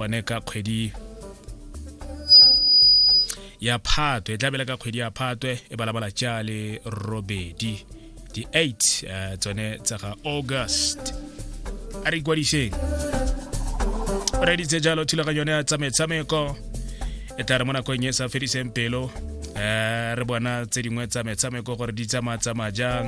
one ka kgwedi ya phatwe e tla bela ka kgwedi ya phatwe e balabala tša le robedi di 8 eh, tsone tsa ga august a re ikwadiseng o reditse jalo thulaganyo yone ya tsa metshameko e tla re mo nakong e sa fediseng pelo um re bona tse dingwe tsa metshameko gore di tsamaya tsamaya jang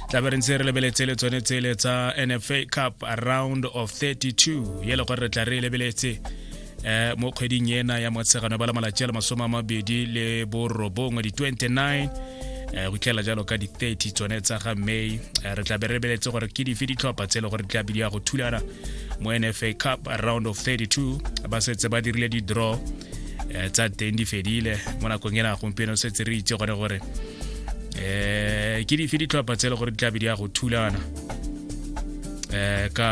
tla be re ntse re lebeletse le tsone tsele tsa nfa cup round of 32 ye le gore re tla re e lebeletse um mo kgweding ena ya motshegano ba la malatsi a le masome a mabedi le borobongwe di-29 um go tlhela jalo ka di-30 tsone tsa ga may eh, re tla be re lebeletse gore ke dife ditlhopha tse e le gore di tla be di ya go thulana mo nfa cup round of 32 ba setse ba dirile di-draw um tsa teng di fedile mo nakong e na gompieno setse re itse gone gore um ke dife ditlhopha tse e le gore di tlabe di ya go thulana um ka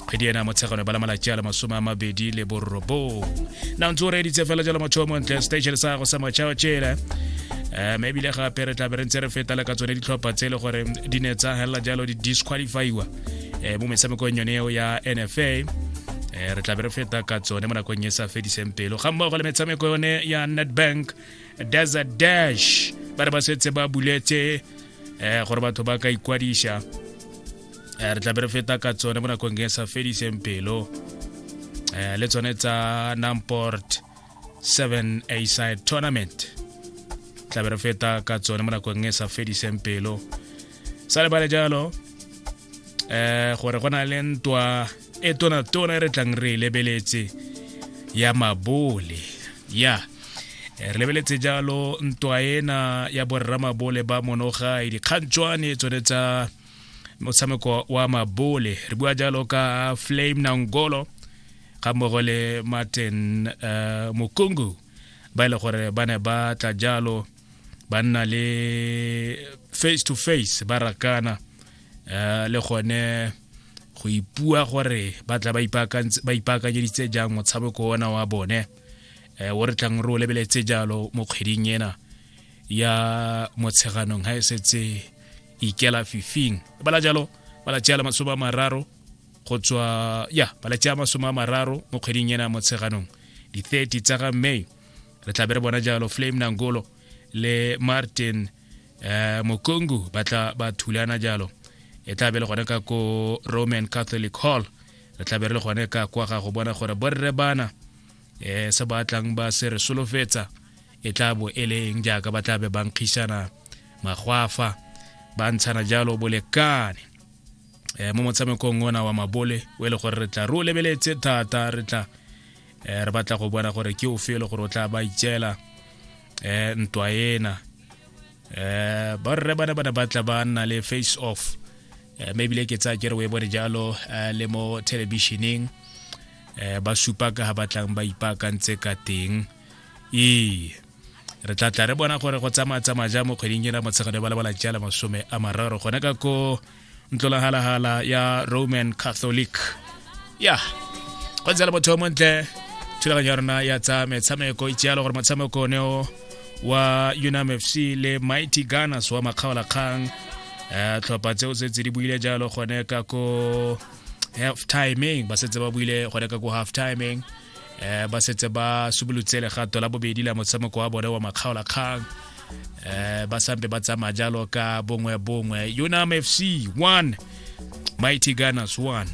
kgwedi ena motshegano ba la malatsi a le masome a mabedi le borobong na ntse o reeditse fela jalo motho o montle station sa go sa matšhao tšele um ebile gape re tlabe re ntse re feta le ka tsone ditlhopha tse e le gore di ne tsa helela jalo di disqualifyiwa um mo metshamekong yone eo ya nfa um re tlabe re feta ka tsone mo nakong e sa fediseng pelo ga mmogo le metshameko yone ya netbank desert dash ba re ba setse ba buletse um gore batho ba ka ikwadisa um re tlabe re feta ka tsone mo nakong e sa fediseng pelo um le tsone tsa namport 7 a side tournament tlabe re feta ka tsone mo nakong e sa fediseng pelo sa lebale jalo eh gore go na le ntwa e tona tona e re tlang re e lebeletse ya mabole ya eh, re lebeletse jalo ntwa ena ya borra mabole ba monogai dikgantšwane tsone tsa motshameko wa mabole re bua jalo ka flame nangolo ga mmogo le martin uh, mokungu ba e le gore ba ne ba tla jalo ba nna le face to face ba rakana uh, le gone go ipua gore ba tla ba ipaakanyeditse jang motshameko ona wa bone um o re tlang re o lebeletse jalo mo kgweding ena ya motsheganong ga e setse ikela fifing bala jalo bala tšeala masome a mararo go tswa ya bala tšea masome a mararo mo kgweding ena ya motsheganong di-30 tsa ga may re tlabe re bona jalo flame nangolo le martin um mokongu ba tla ba thulana jalo e tla be le gone ka ko roman catholic hall re tla be re le gone ka kwa ga go bona gore borre bana um se ba tlang ba se re solofetsa e tla bo e le eng jaaka ba tla be ba nkgisana magwafa ba ntshana jalo bolekane um mo motshamekong ona wa mabole o e le gore re tla re o lebeletse thata re tla eh, re batla go bona gore ke o fele gore o tla ba itšela eh, ntwa ena eh, borre bana bana ba tla ba nna le face off eh, mme ebile ke tsaya ke re o e bone jalo eh, le mo thelebišeneng eh, ba supa ka ga ba tlang ba ipaakantse ka teng ee re tla tla re bona gore go tsamaya tsamaya ja mo kgweding ena motshegare ba lebala jala masome a mararo gone ka ko ntlolahalagala ya roman catholic ya go ntse le motho yo montle thulaganyo ya rona ya tsa metshameko itse yalo gore motshameko one o wa unam f c le mighty gunners wa makgaolakgang um tlhopha tseo tse tse di buile jalo gone ka ko half timing ba setse ba buile gone ka ko half timing eh ba setse ba subolotse legato la bobedi la motshameko wa bone wa makgaolakgang eh ba sampe ba tsamaya jalo ka bongwe bongwe unam fc 1 mighty gunners 1